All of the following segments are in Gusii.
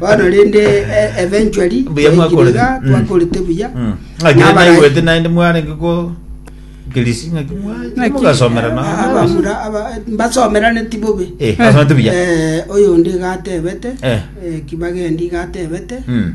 bono rende eh, eventually Mbuya twaikire mwakorete. iga, Mm. twakorete buya Mm. Ng'aki Nabara- naigwete naende mwarenge ko kirisi ng'aki mwa- Ng'aki- mugasomera na- Ah, abamura aba- mbasomerane tibobe Eh, basomete buya. Eh, oyo onde igatebete Eh. eh, kibagendi igatebete Mm.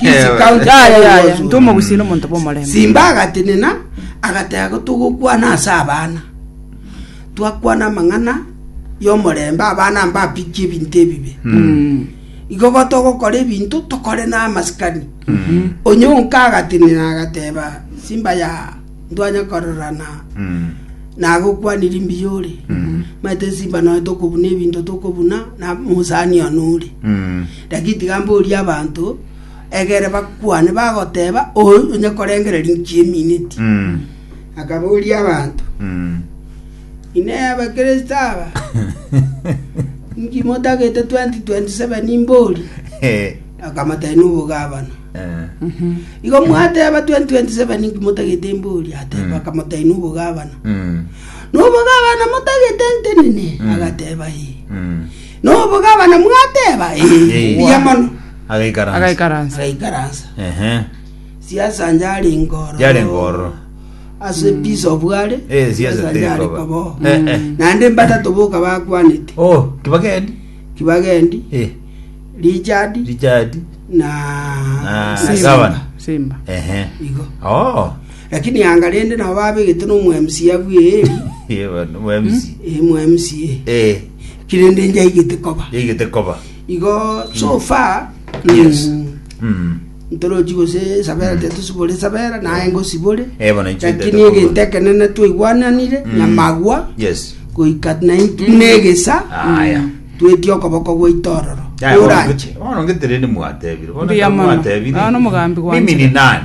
Kisii County Yaya, Kenya yaya, Wazoo. ntoma obusio nomonto bw'omorembe. Simba agatenena agateba ko togokwana ase abana twakwana amang'ana y'omorembe abana mbapikie ebinto ebibe igo igo togokora ebinto tokore n'amasikani onye onka agatenena agateba simba ya ndwanya kororana nagokwanirie mbuya ore maete simba noe tokobuna ebinto tokobuna na mosani one ore Naki tiga mborie abanto, egere bakwane, bagoteeba, Onye korengereria inki emineti? Mm. Akaboria abanto, Mm. Inee Abakristo aba, inki motagete 2027 mbori? Eh. Akamotebia n'obogabana. Eh. Igo mwateba 2027 inki motagete mbori? Ateba, Mm. akamotebia n'obogabana. Mm. N'obogabana motagete ntenene? Mm. Agateba, ee. Mm. Nobogabana mwateba, Ee, mbuya mono. Agaikaransa. Agaikaransa. Agaikaransa. Ehe. Siasanja ari ngoro. Yare ngoro. Ase peace of ware. Eh, siasa siasanja teri ari koba. kobo. Eh, eh. Naende mbatato boka bakwanete. Oh, kibageni. Kibagendi, Eh, Richard Richard. na Na Simba. Gavana. Simba. Ehe. Igo. Oh. Lakini yanga rende nabo babegete no mu MCA bweri, Ye bana, mu MC. eh, mu MCA. Eh. Kirende njaigete koba. Yaigete koba. Igo so far mm, Yes. Mm. ntorochi gose sabera tetosibore sabera naye ngosibore Eh, bono inche lakini ntaete egento kobua. ekenene twaigwananire nyamagwa Yes. goika nainki negesa Aya. tweti okoboko gwaito ororo Yaya, bono oranche ngete- bono ngetereri mwatebire. Bono Mbuya mono. mwatebire, Ah, nomogambi gwanje. Mimi ni nani?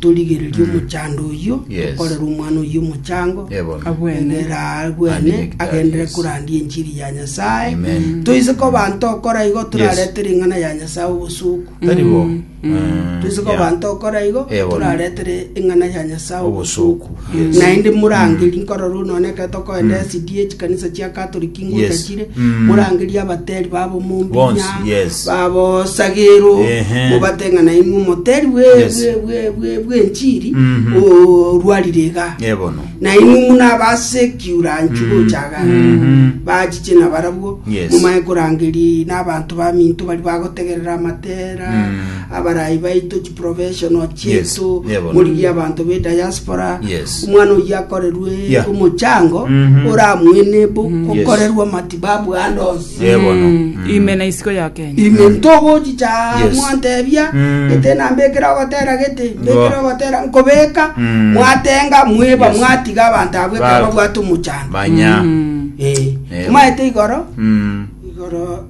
Torigererie omochando oyio Yes. okorera omwana oyio omochango Eh, bono. Abwene. Ere aa abwene Andike gitari, agendere yes. korandia enchiri ya nyasae Amen. toise ko banto okora igo torarete ring'ana ya nyasae obosuku Tari bo. Eh, toise ko yeah. banto okora igo Eh, bono. toraretere ing'ana ya nyasae obosuku Obosuku. Naende morangerie, nkorora onone ekero tokoenda esidi ye chikanisa chia Catholic Yes. ngotachire, Mm. morangerie abateri ba bomombinya, Bonsi, yes. ba bosagero, Ehe. mobate ng'a nainwe omoteri bwe- Yes. bwe- bwe- bwe- bw'enchiri Mhm. orwarire iga Ebono. nainwe muna basekiuranchi gochaga Mhm. bachiche na barabwo Yes. mumaye korangeri n'abanto baminto bari bagotegerera amatera Mm. abarayi baito professional Yes, chiaito yeah, bono. morigia abanto be diaspora Yes. omwana oyio akorerwe Yeah. omochango Mhm. oramuene bo kokorerwa matibabu ande onsi Eh, bono. Mm, Mm. ime na isiko ya kenya ime ntogochicha Yes. mwantebia Mm. gete nambekera ogotera gete Ngo. mbekera ogotera nkobeka Mm. mwatenga mweba Yes. mwatiga abanto abwe Ba- kaba bwate omochango banya Mm. Eh, Eh. maete igoro Mm. igoro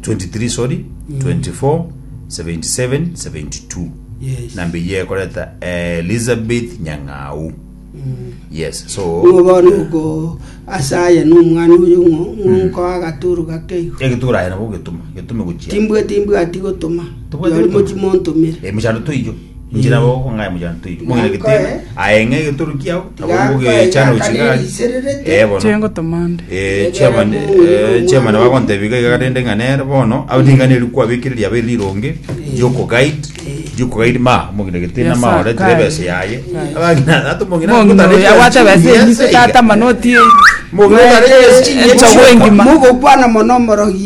23 sorry 24 77 72 Yes. namba eyio ekoreta elizabeth nyang'au yes so nigo bori oko asaye nomwana oyo ng'o- ng'onkoa agaturu gakeigo egetura aye nabo getuma getume gochia timbwe timbwati gotoma Tobwati yori gotoma. mochi montomere Eh, muchando toiyo Inche nabo ogokong'aya mojano toiri. Mong'ina gitebe, aye ng'a egetoro kiago, nabo ngogecha nochi gari. Eh, bono. Chengo tomande. Eh, chairman, eh, chairman bagontebia iga iga rende ng'a nere bono aba niga neri kwabekire riaba eri rironge riokoguide riokoguide ma omong'ina gete Yes, namaore sir. tire ebese yaye Yes. abang'ina ata omong'ina Mong'ina oyo ogotareka abwate ebesa chinyense enyiso iga. tata manoti Mong'ina otareka chinyense Echago engima. Mogokwana mono omorogi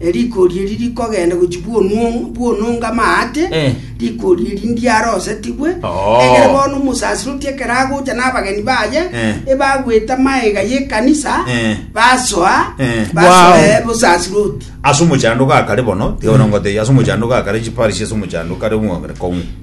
Erikori eri rikogenda gochia bw'onuo- bw'ononga amaate, Eh. rikori eri ndiarosetigwe, Oo. egere bono omosasiroti ekero agocha n'abageni baye, Eh. ebagwete amaega y'ekanisa, Eh. basoa, Eh. basoe Wow. bosasiroti. ase omochandogo akare bono tiga bono ngotebia ase omochandogo akare chiparish ase omochandogo kare omogere kong'u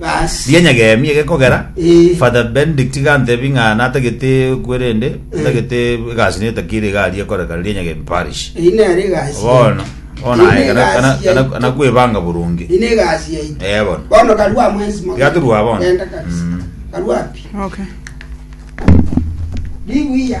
Bas. Rianya geemi ege kogera Eh. Father Benedict iga antebi ng'a natagete kwe rende ntagete egasi niyo etakiri iga aria ekorekana rianya geemi parish. Eyi nere egasi Bono bono Eyi aye kana negasi kana yaito. kana kana kwebanga burunge. Ine egasi yaito. Eh, bono. Bono karua mwensi mo. Iga torua bono. Genda kabisa. Mm. Karua pi. Okay. Ribuya.